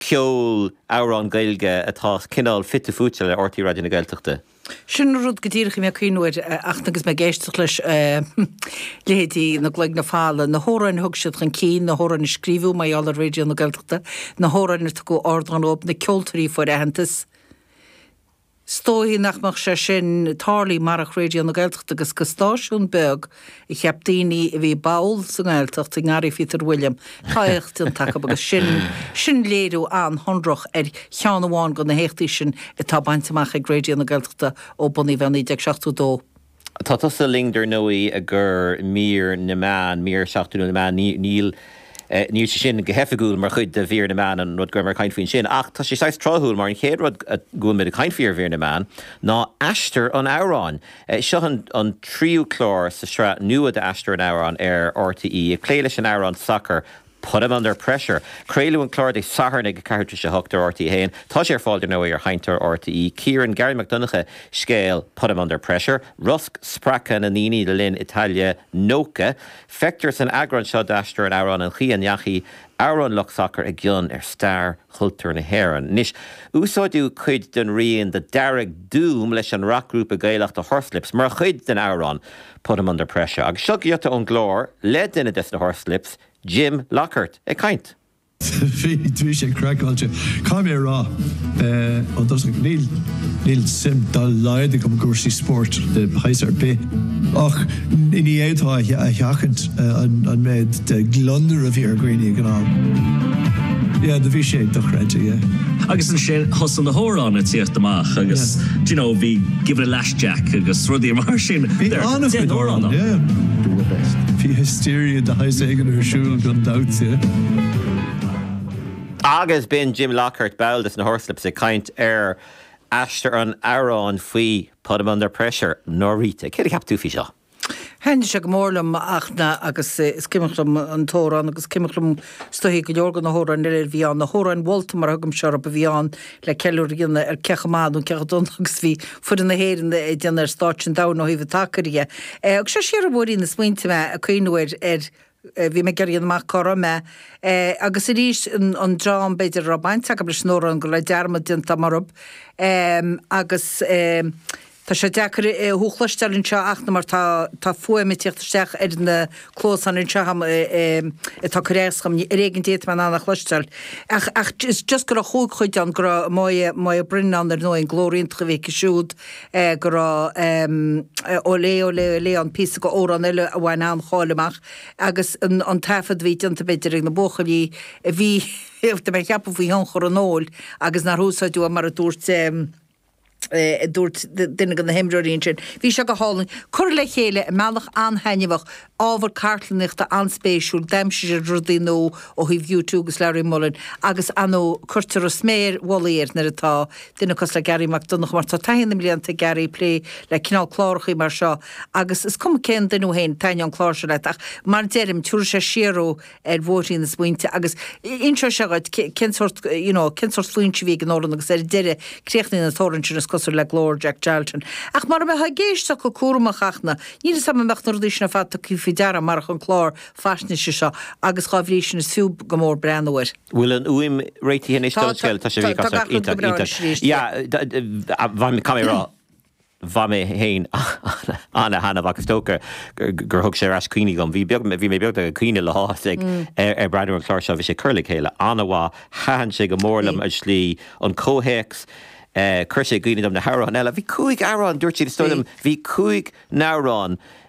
ceol, amhráin Gaeilge atá cineál fite fuaite le rte Raidió na Gaeltachta. Sin an rud go díreach a bhí mé ag cuimhneamh air ach agus mé ag éisteacht leis leithéidí Na Cloigne Folmha, na hamhráin a thug siad chun cinn, na hamhráin a scríobhadh mar gheall ar Raidió na Gaeltachta, na hamhráin ar tugadh ardán dóibh, na ceoltóirí a fuair aitheantas. Is dóichí nach mbeadh sé sin tarlaithe marach Raidio na Gaeltachta agus go stáisiún beag a cheap daoine a bhí ball sa nGaeltacht i ngarraí Phíotair Uilliam. Tá éacht déanta acu agus sin léiriú an-shonrach ar cheann amháin de na héachtaí sin atá bainte amach ag Raidio na Gaeltachta ó bunaíodh é i 1972. Tá tusa linn dar ndóigh i gcomhair mír na meán, mír seachtainiúil na meán. Níl níl sé sin go hoifigiúil mar chuid de mhír na meán an rud go raibh mé ag caint faoi ansin ach tá sé saghas tráthúil mar an chéad rud go bhfuil muid ag caint faoi ar mhír na meán ná Aistear an Amhráin. Seo an an tríú clár sa tsraith nua d'Aistear an Amhráin ar RTÉ ag plé leis an amhrán sacair Put 'em under pressure. Craoladh an clár Dé Sathairn ag 8:30 ar RTÉ 1. Tá sé ar fáil, dar ndóigh, ar Sheinnteoir RTÉ. Cíorann Garry Mac Donncha scéal Put 'em under pressure, rosc spreagtha na ndaoine le linn Italia 90. Feictear san eagrán seo d'aistear an amhráin an chaoi a ndeachaigh amhrán lucht sacair i gcion ar stair chultúir na hÉireann. Anois, úsáideadh cuid den rian de Dearg Doom leis an rac-ghrúpa Gaelach The Horslips mar chuid den amhrán. Put 'em under pressure. Agus seo giota ón gclár le duine des na Horslips, Jim Lockhart, ag caint. Bhí bhí sé craiceáilte. Caithfidh mé a rá, eh, ar dtosach, níl níl suim dá laghad agam i gcúrsaí spóirt de shaghas ar bith. Ach ní ní fhéadfá é a sheachaint an an méid de ghliondar a bhí ar dhaoine ag an am. Yeah, do bhí sé dochreidte, yeah. Agus ansin thosaigh na hamhráin ag tíocht amach agus, do you know, bhí give it a lash isteach agus rudaí mar sin. Bhí an-chuid amhrán ann. Bhí hysteria de shaghas éigin ar siúl gan dabht. Agus b'in Jim Lockhart, ball des na Horslips, ag caint ar aistear an amhráin faoi Put 'em Under Pressure, Nóiríde. Céard a cheap tú faoi seo? Thaitnigh sé go mór liom ach na agus is cuimhin liom an t-amhrán agus cuimhin liom is dóiche go leor de na hamhráin eile a bhí ann. Na hamhráin mholta mar a thugaimse orthu a bhí ann le ceiliúradh a dhéanamh ar cé chomh maith nó cé chomh dona agus a bhí foireann na hÉireann ag déanamh ar stáitse an domhain ó thaobh an tsacair de. Thug sé siar ar bhóithrín na smaointe mé ag cuimhniú ar Bhí mé ag oibriú amach cá raibh mé. Agus arís, an dream, b'fhéidir, a raibh baint acu leis an amhrán, go raibh dearmad déanta orthu. Agus tá sé deacair thú a chloisteáil anseo ach mar tá fuaim ag teacht isteach ar na cluasáin anseo agam atá ag cur as dom. Ar éigean a fhéadfaidh mé a dhath a chloisteáil. Ach just go raibh Chuck D ann, go raibh Moya Brennan ann ar ndóigh, an glór iontach a bhí aici siúd, go raibh olé, olé, olé an píosa d'amhrán eile a bhain an-cháil amach agus an taifead a bhí déanta b'fhéidir ag na buachaillí a bhí, tá mé ag ceapadh, faoi thionchar an óil, agus nár húsáideadh é mar a dúirt, a dúirt duine de na himreoirí ansin. Bhí seo go hálainn. Curtha le chéile i mbealach an-taitneamhach. Ábhar cartlannaíochta an-spéisiúil, d'aimsigh sé rudaí nua ó thaobh U2 agus Larry Mullen agus ar ndóigh, cuirtear an sméar mhullaigh air nuair atá duine cosúil le Garry Mac Donncha, mar tá taithí na mblianta ag Garry ag plé le cineál clárachaí mar seo agus is cuma cén duine thú féin, taitneoidh an clár seo leat ach mar deirim, tiúrfaidh sé siar thú. ar bhóithrín na smaointe agus inseoidh sé dhuit cén sórt, you know, cén sórt faontaí a bhí ag an amhrán agus ar deireadh críochnaíonn an t-amhrán sin, is cosúil, le glór Jack Charlton. Ach mara mbeifeá ag éisteacht go cúramach ach na, níl 'fhios a'm an mbeadh na rudaí sin ar fad tugtha faoi deara, marach an clár faisnéise seo agus dhá bhrí sin is fiú go mór breathnú air. Bhfuil an fhuaim réitithe anois Tá, don tá, scéal? Tá sé tá, tá gach rud go iontach, breá iontach. anois arís, Yeah, yeah. d- d- bhain mé, caithfidh mé a rá, Bhain mé féin an-taitneamh as, is dócha gur thug sé ar ais cuimhní dhom. Bhí beag, bhí mé beagnach ag caoineadh le háthas ag breathnú ar an gclár seo. Bhí sé curtha le chéile an-mhaith. Thaitin sé go mór Bhí. liom an tslí, an comhthéacs. Chuir sé i gcuimhne dom na hamhráin eile. Bhí cúig amhrán, dúirt siad, is dóigh Bhí. liom, bhí cúig n-amhrán.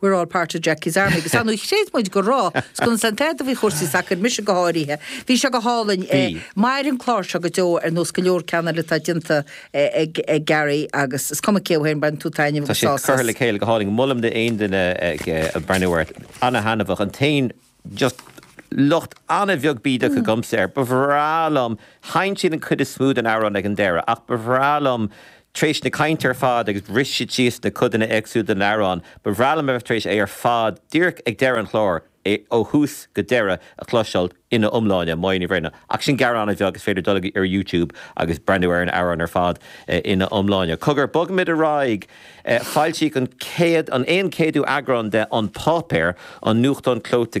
We're all part of Jackie's army. Agus ar ndóigh chreid muid go raibh muid chun seans a thabhairt do chúrsaí sacair, mise go háirithe. Bhí seo go hálainn. Bhí. Mairfidh an clár seo go deo ar nós go leor ceanna eile atá déanta ag Gerry agus is cuma cé thú féin baineann tú taitneamh Tá agus siad sás curtha as. le chéile go hálainn. Molaim d'aon duine breathnú orthu. Ana-thaitneamhach. An t-aon. just locht an-bheag bídeach agamsa air. Ba bhreá liom, sheinn siad an chuid is mó den amhrán ag an deireadh, ach ba bhreá liom, tar éis na cainte ar fad, agus bhris siad síos na codanna éagsúla den amhrán, ba bhreá liom a bheith tar éis é ar fad, díreach ag deireadh an chláir, ó thús go deireadh a chloisteáil ina iomláine. mar ní bhíonn, ach sin gearán an-bheag, is féidir dul ar YouTube agus breathnú ar an amhrán ar fad ina iomláine. Cogar, bogaimid ar aghaidh. Foilsíodh an céad, an aon céadú eagrán de An Páipéar, an nuachtán clóite